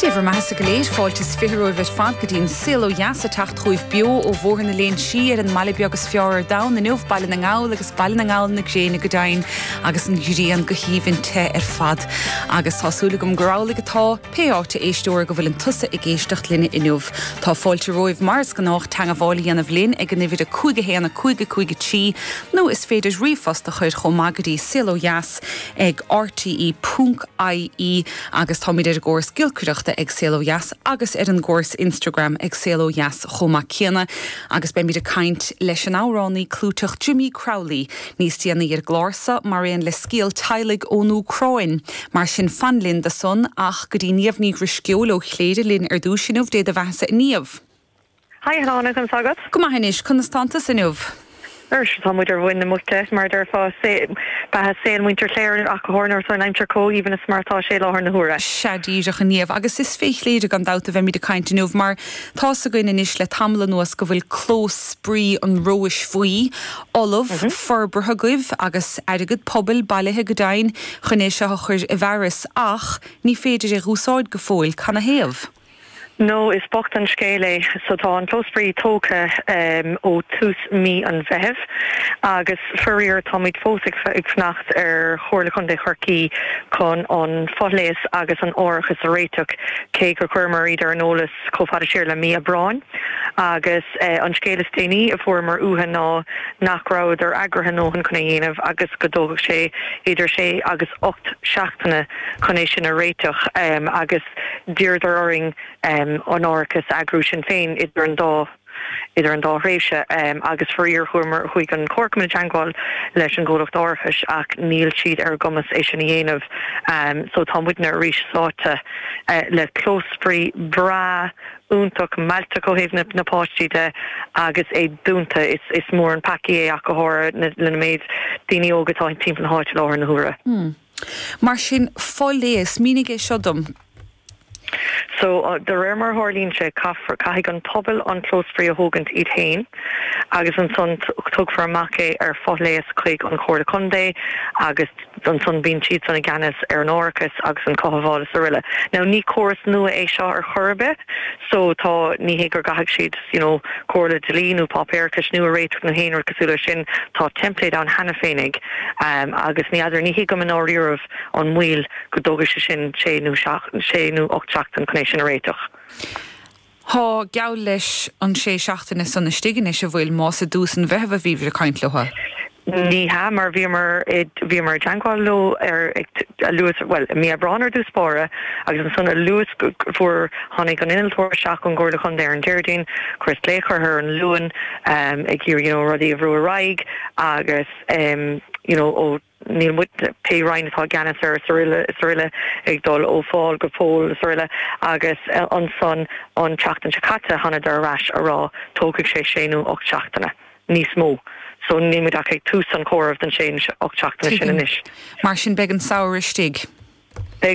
Dé bhur mbeathasa go léir. Fáilte is fiche romhaibh ar fad go dtí an Saol ó Dheas ag teacht chugaibh beo ó Bhóthar na Léinsí ar an mbaile beag is fearr ar domhan inniu, Baile na nGall agus Baile na nGall na gréine go deimhin agus an ghrian go haoibhinn te ar fad. Agus tá súil agam gur amhlaidh atá, pé áit a éisteoir go bhfuileann tusa ag éisteacht linne inniu. Tá fáilte romhaibh mar is gnách teangabháil a dhéanamh linn ag an uimhir 515 53 nó is féidir ríomhphost a chuir chomh maith go dtí saolódheas. ag rte punc ie agus táimid ar an gcóras giolcaireachta ag Saol Ó Dheas agus ar an gcóras Instagram ag Saol Ó Dheas chomh maith céanna agus beimid ag caint leis an amhránaí clúiteach Jimmy Crowley níos déanaí ar an gclár so mar aon le scéal teaghlaigh ón Úcráin mar sin fan linn dó san ach go dtí Niamh Ní Dhrisceoil ó Chléire linn ar dtús inniu Dé do Bheathasa a Niamh. Hi, a Shláine, conas tá agat? Go maith anois, conas tánn tusa inniu? Anois tá muid ar mhuin na muice, mar a deirfeá, beatha saol muintir Chléire ach go háirithe nuair atá an aimsir comh haoibhinn is mar atá sé i láthair na huaire. Sea, díreach a Niamh, agus is fé Chléire gan dabht a bheimid ag caint inniu, mar tá's againn anois le tamall anuas go bhfuil clós spraoi an Róis Bhuí ullamh, forbartha agaibh, agus airgead pobail bailithe go deimhin chun é seo a chuir i bhfearas, ach ní féidir é dh'úsáid go fóill, canathaobh? Nó is bocht an scéal é. So tá an Clós Spraoi tógtha ó tús mí an Mheithimh agus faraor táimid fós ag fanacht ar Chomhairle Contae Chorcaí chun an foléas agus an árachas a réiteach, cé gur chuireamar iad ar an eolas chomh fada siar le mí Aibreáin. Agus an scéal is déanaí a fuaireamar uatha ná nach rabhadar eagraithe a ndóthain chun é dhéanamh agus go dtógfadh sé idir sé agus ocht seachtaine chun é sin a réiteach. Agus. D'iarradar orainn an árachas a eagrú sinn féin idir an dá idir an dá thréimhse agus faraor chuamar chuaigh an comharchumann i dteangmháil leis an gcomhlacht árachais ach níl siad ar a gcumas é sin a dhéanamh so tá muidne arís sáite le clós spraoi breá iontach mealltach ó thaobh na na páistí de agus é dúnta is is mór an peaca é ach go háirithe le na méid daoine óga atá timpeall na háite i láthair na huaire. Mar sin, foléas. Mínigh é seo dom. So, de réir mar a tharlaíonn sé, caithfear, caithfidh an pobal an clós spraoi a thógaint iad féin agus ansan tugfar amach é ar foléas chuig an Chomhairle Contae agus ansan bíonn siadsan i gceannas ar an árachas agus an cothabháil is araile. Now, ní córas nua é seo ar chor ar bith. so tá, ní hé gur gcaithfidh siad you know comhairle dlí nó páipéarachas nua a réiteach nó aon rud cosúil leis sin, tá template ann cheana féinig ehm agus ní fheadar, ní thuigim i ndáiríribh an moill go dtógfaidh sé sin sé nó seacht, sé nó ocht seachtain chun é sin a réiteach. Tá, geall leis an sé seachtaine san istigh anois an bhfuil, más i dtús an Mheithimh a bhíobhair ag caint leo? Ní hea, mar bhíomar bhíomar i dteangmháil leo ar a luas, bhuel, i mí Aibreáin ar dtús báire, agus ansan a luas go bhfuair tháinig an innealtóir isteach ón gComhairle Contae ar an Déardaoin, chuireas glaoch orthu ar an Luan em ag iarraidh you know rudaí a bhrú ar aghaidh agus em you know ó níl muid, pé roinn atá i gceannas air is aroile is aroile ag dul ó Phól go Pól is aroile agus eh ansan an tseachtain seo caite thánadar ar ais a' rá tógfaidh sé sé nó ocht seachtaine. níos mó. So níl muid ach ag tús an chomhairimh don sé, ocht seachtaine sin Tuigim. anois. Mar sin beidh an samhradh istigh. Beidh.